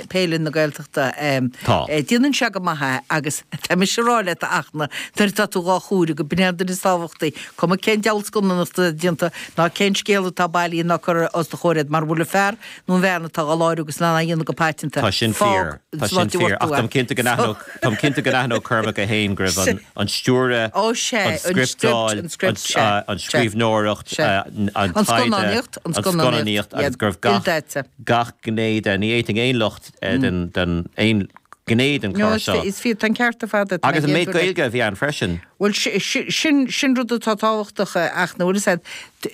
Peile na Gaeltachta é. Tá. Déanann sé go maith é agus tá mise a rá leat, a Fhachtna, nuair atá tú dhá chur i láthair, gurb in é an duine is tábhachtaí, cuma cén diabhal scannánach atá déanta ná cén scéal atá bailithe ná curtha os do chomhair agat, mara bhfuil an fear nó an bhean atá dhá láithriú agus á dhéanamh go paiteanta, Tá sin fíor. fág Tá sin slán fíor. orthu Ach é. táim cinnte go So. n-aithneodh, táim cinnte go n-aithneodh Cormac é féin go raibh an, Sin. an stiúradh, Ó, sé, an an script, scripteáil, an script, an, sé, ah, an sé. scríbhneoireacht, Sé. ah, n- an An taighde, scannánaíocht, an an scannánaíocht, scannánaíocht, agus yeah, gurbh gach, il-daite. gach gné de. Ní fheicfinn aon locht in, aon ghné den clár seo. Is fíor, tá an ceart ar fad agat. Agus an méid Gaeilge a bhí ann freisin. Bhuel, sin rud atá tábhachtach a aithne. Bhuel, is ea,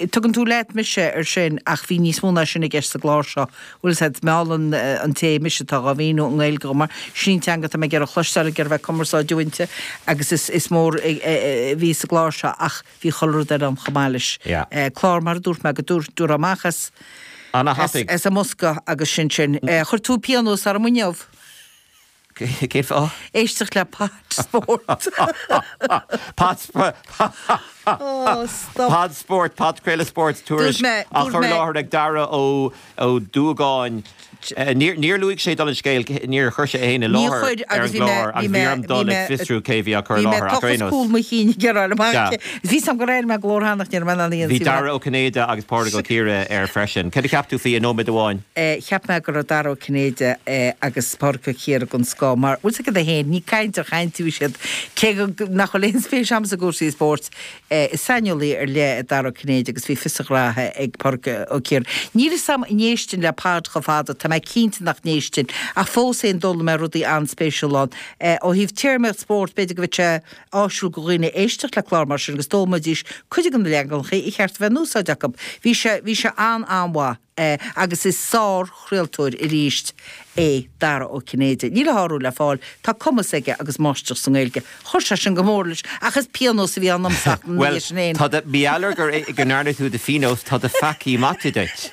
tugann tú leat mise ar sin ach bhí níos mó ná sin i gceist sa gclár seo. Bhuel, is ea, mealann an té mise, atá dhá mhíniú i nGaeilge dhom mar sin an teanga atá mé ag iarraidh a chloisteáil, ag iarraidh bheith ag cumarsáid inti agus is mór a bhí sa gclár seo ach, bhí chuile rud eile ann chomh maith leis, clár, mar a dúirt mé, go dtabharfá amach as an mbosca agus sin sin. Chuir tú pionós orm inniu. Cén fáth? Éisteacht le Pod Spórt. Pod Spórt, podchraoladh spóirt, tuairisc á chur i láthair ag Dara Ó. Ó Duagáin, níor luaigh sé dála an scéil, níor chuir sé é féin i láthair ar an gclár agus bhí orm dul ag fiosrú cé a bhí á chur i láthair ach, ar aon nós. Bhí Dara Ó Cinnéide agus Pádraig Ó Ciardha air freisin. Céard a cheap tú faoi i nóiméad amháin? Cheap mé go raibh Dara Ó Cinnéide agus Pádraig Ó Ciardha den scoth mar, bhuel, sin iad é féin, ní ag caint ar chaint a bhí siad, cé nach bhfuil aon spéis agam i gcúrsaí spóirt, é. Is saineolaí ar leith é Dara Ó Cinnéide agus bhí fios a ghraithe ag Pádraig Ó Ciardha. Níl fhios agam an éistinn le podchraoladh chomh fada, tá mé cinnte nach n-éistinn, ach fós féin d'fhoghlaim mé rudaí an-spéisiúla ann. Ó thaobh téarmaíocht spóirt, b'fhéidir go mbeadh sé áisiúil do dhaoine éisteacht le clár mar sin agus d'fhoghlaimeoidís cuid de na leaganacha a ba cheart a bheith in úsáid acu. Bhí sé, bhí sé an-an-mhaith. é agus is sár-chraoltóir arís é Dara Ó Cinnéide. Níl a shárú le fáil, tá cumas aige agus máistreacht sa nGaeilge. Chuir sé sin go mór leis ach is pionós a bhí ann domsa ach ní Bhuel, eisean féin. tá mé ag éileamh go ndearna tú do phionós, tá do pheacaí maite duit.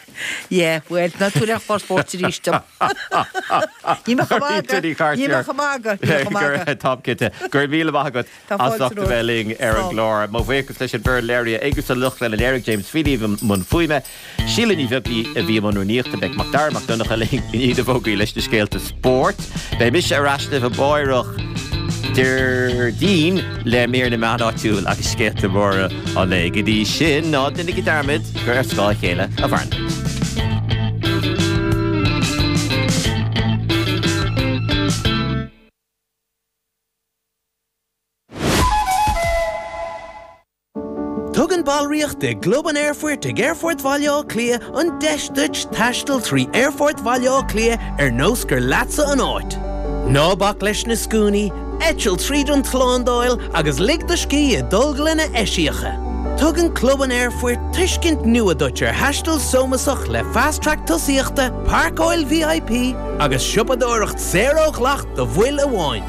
Yeah, bhuel, ná tabhair aon chlár spóirt arís dom. Go raibh maith agat, go raibh maith agat. Tá cinnte. Go raibh míle maith agat. Tá as fáilte ucht a bheith romhat. linn ar an Slán. gclár. Mo bhuíochas leis an mbeirt léiritheoirí agus an lucht an léirithe James Feeley i mbun fuaime, Síle Ní Bheaglaoich a bhí i mbun rúnaíochta, beidh Macdara Mac Donncha linn i ndiaidh na bhfógraí leis na scéalta spóirt. Beidh mise ar ais libh amárach, Déardaoin, le mír na meán áitiúil agus scéalta móra an lae. Go dtí sin, ná déanaigí dearmad gur ar scáth a chéile a mhaireann. Tugann ballraíocht i gClub an Aerfoirt ag Aerfort Bhaile Átha Cliath an deis duit taisteal trí Aerfort Bhaile Átha Cliath ar nós gur leatsa an áit. Ná bac leis na scuainí, eitil tríd an tslándáil agus lig do scíth i dtolglanna eisiacha. Tugann Club an Aerfoirt tuiscint nua duit ar thaisteal sómasach le Fast Track Tosaíochta, Páirceáil VIP agus siopadóireacht saor ó dhleacht do bhaill amháin.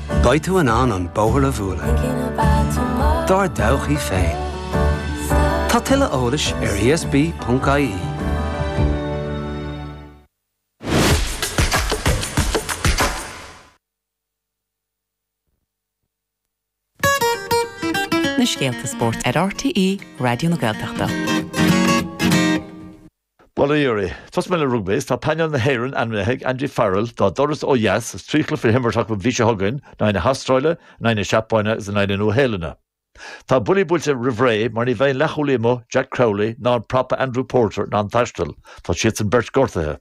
Beidh tú in ann an bóthar a bhualadh dár dtodhchaí féin. Tá tuilleadh eolais ar ESB.ie. na scéalta spóirt ar RTÉ Raidió na Gaeltachta. Bail ó Dhia oraibh. Tosóidh mé le rugbaí, is tá painéal na hÉireann ainmnithe ag Andy Farrell dá dturas ó dheas, is trí chluiche le himirt acu an mhí seo chugainn, in aghaidh na hAstráile, in aghaidh na Seapáine agus in aghaidh na Nua-Shéalainne. Tá buillí buailte roimh ré mar ní bheidh an leathchúlaí amuigh Jack Crowley ná an prapa Andrew Porter in ann taisteal, tá siadsan beirt gortaithe.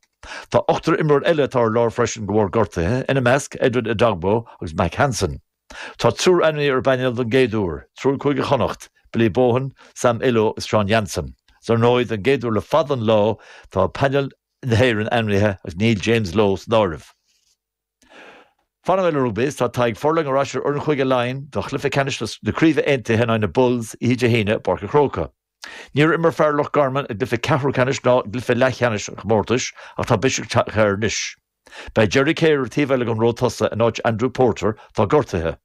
Tá ochtar imreoir eile atá ar lár freisin de bharr gortuithe, ina measc, Edwin Edogbo agus Mack Hansen. Tá triúr ainmnithe ar an bpainéal don gcéad uair, triúr Chúige Chonnacht, Billy Bohan, Sam Illo is Sean Jansen. Is ar ndóigh, don gcéad uair le fada an lá, tá painéal na hÉireann ainmnithe agus níl James Lowe san áireamh. Fanfaidh mé le rugbaí is tá Tadhg Furlong ar ais ar fhoireann Chúige Laighean do chluiche ceannais na craoibhe aontaithe in aghaidh na Bulls oíche Dé hAoine i bPáirc an Chrócaigh. Níor imir fear Loch Garman i gcluiche ceathrúcheannais ná i gcluiche leathcheannais an chomórtais ach tá biseach tagtha air anois. Beidh Jerry Cahir ar an taobh eile den ró tosaigh in áit Andrew Porter atá gortaithe.